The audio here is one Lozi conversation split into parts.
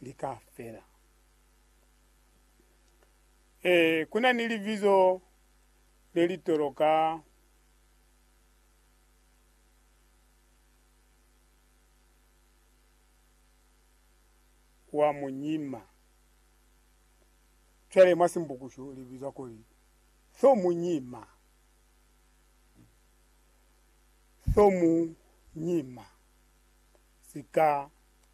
li ka fela. Ee, ku na ni libizo le li toloka wa munyima. Cwale mwa Simbukushu li bizwa kuli Thomunyima. Thomunyima. Sika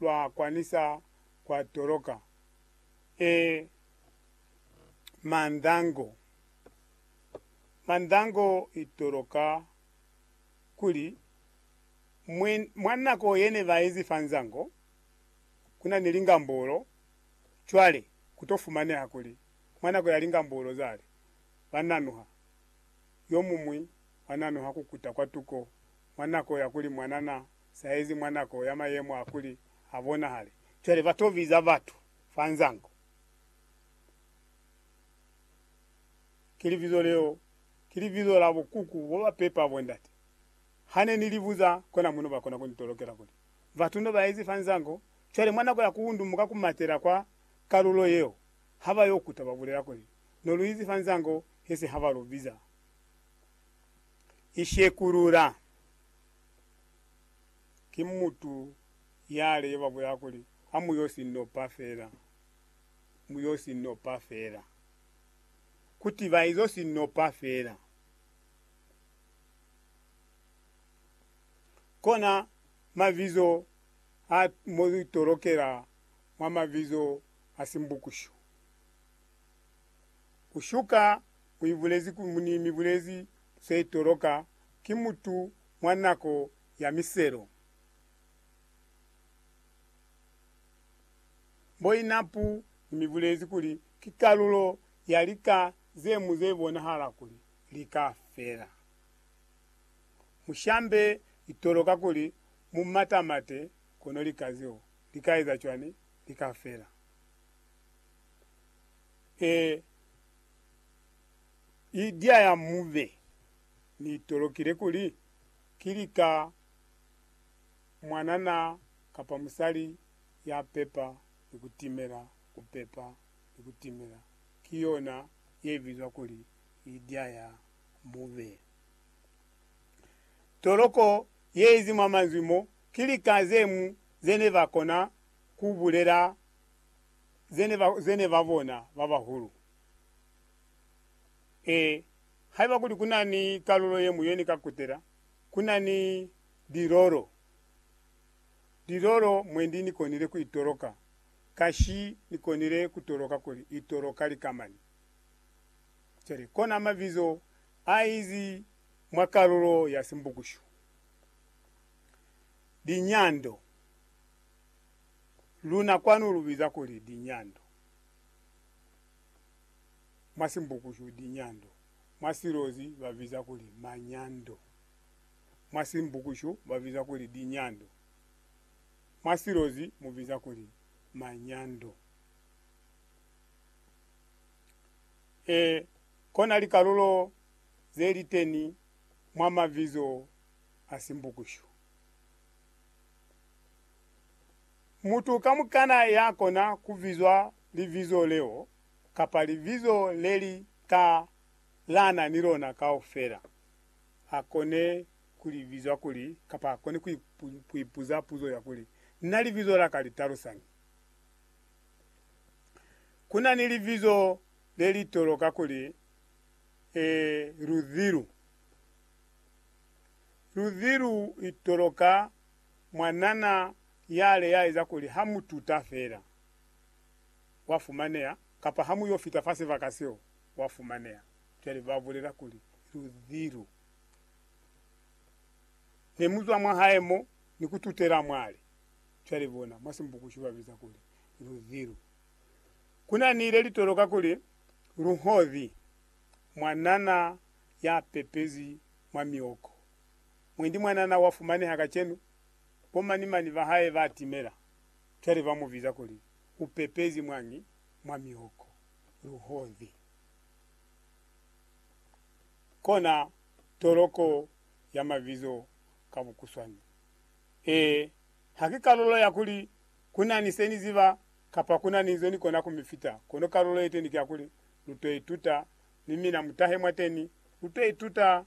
lwa kwanisa kwa toloka e mandango. Mandango i toloka kuli mwi, mwa nako ye ne ba ezi fa nzango, ku na ni lingambulo. Cwale ku to fumaneha kuli mwa nako ya lingambulo zale, ba nanuha, yo muñwi wa nanuha ku kuta kwa tuko mwa nako ya kuli mwanana Saizi mwa nako ya mayemo a kuli ha bonahale, cwale ba to biza batu fa nzango. Ki libizo leo, ki libizo la bukuku bo ba pepa bondate. Ha ne ni li buza kona muno ba kona ku ni tolokela kuli, Batu no ba ezi fa nzango, cwale mwa nako ya ku undumuka ku matela kwa kalulo yeo, ha ba yo kuta ba bulela kuli, No lu izi fa nzango, he se ha ba lu biza. I shekulula. Ki mutu yale yo ba bulela kuli, Ha mu yo si nopa fela. Mu yo si nopa fela. Kuti ba izo si nopa fela. Kona mabizo a mo lu tolokela mwa mabizo a Simbukushu. Ku shuka mu ibulezi kuli, ni mi bulezi ze itoloka ki mutu mwa nako ya miselo. Boinapu ni mi bulezi kuli ki kalulo ya lika ze mu ze bonahala kuli li ka fela. Mu shambe itoloka kuli mu matamate kono lika zeo li ka eza cwani? Li ka fela. E. Idya ya mube. Ni tolokile kuli, ki lika mwanana kapa musali ya pepa ni ku timela, ku pepa ni ku timela. Ki yona ye bizwa kuli idya ya mube. Toloko ye izi mwa manzwi mo, ki lika ze mu ze ne ba kona ku bulela ze ne ba bona ba bahulu. Ee, haiba kuli kunani kalulo yeñwi yeni ka kutela, kunani lilolo. Lilolo mwendi nikonile kuitoloka, kashi nikonile kutoloka kuli itoloka lika mani. Cwale, kona mabizo aizi mwa kalulo ya Simbukushu, linyando. Luna kwanu lubiza kuli linyando. Mwa Simbukushu, Dinyando, mwa Silozi ba biza kuli Manyando. Mwa Simbukushu ba biza kuli Dinyando, mwa Silozi mu biza kuli Manyando. E kona likalulo ze li teni mwa mabizo a Simbukushu. Mutu kamukana ya kona ku bizwa libizo leo kapa libizo le li ta lana ni lona kaufela, a kone ku li bizwa kuli, kapa a kone ku ipuza puzo ya kuli, Na libizo la ka li talusañi? Ku na ni libizo le li toloka kuli, e, Luzilu. Luzilu i toloka mwanana yale ya eza kuli ha mu tuta fela, wa fumaneha, kapa ha mu yo fita fa sibaka seo, wa fumaneha. Cwale ba bulela kuli, Luzi lu ne mu zwa mwa hae mo, ni ku tutela mwale. Cwale bona, mwa Simbukushi ba biza kuli, Luzi lu. Ku na ni le li toloka kuli, Luhozi, mwanana ya pepezi mwa mioko. Mwendi mwanana wa fumaneha kacenu, bo mani mani ba hae ba timela. Cwale ba mu biza kuli u pepezi mwangi mwa mihoko, luhozi. Kona toloko ya mabizo ka bukuswani. Ee, ha ki kalulo ya kuli ku na ni se ni ziba kapa ku na ni nzo ni kona ku mi fita, kono kalulo yeteni ki ya kuli lu to ituta, mi mina mu tahe mwateni, lu to ituta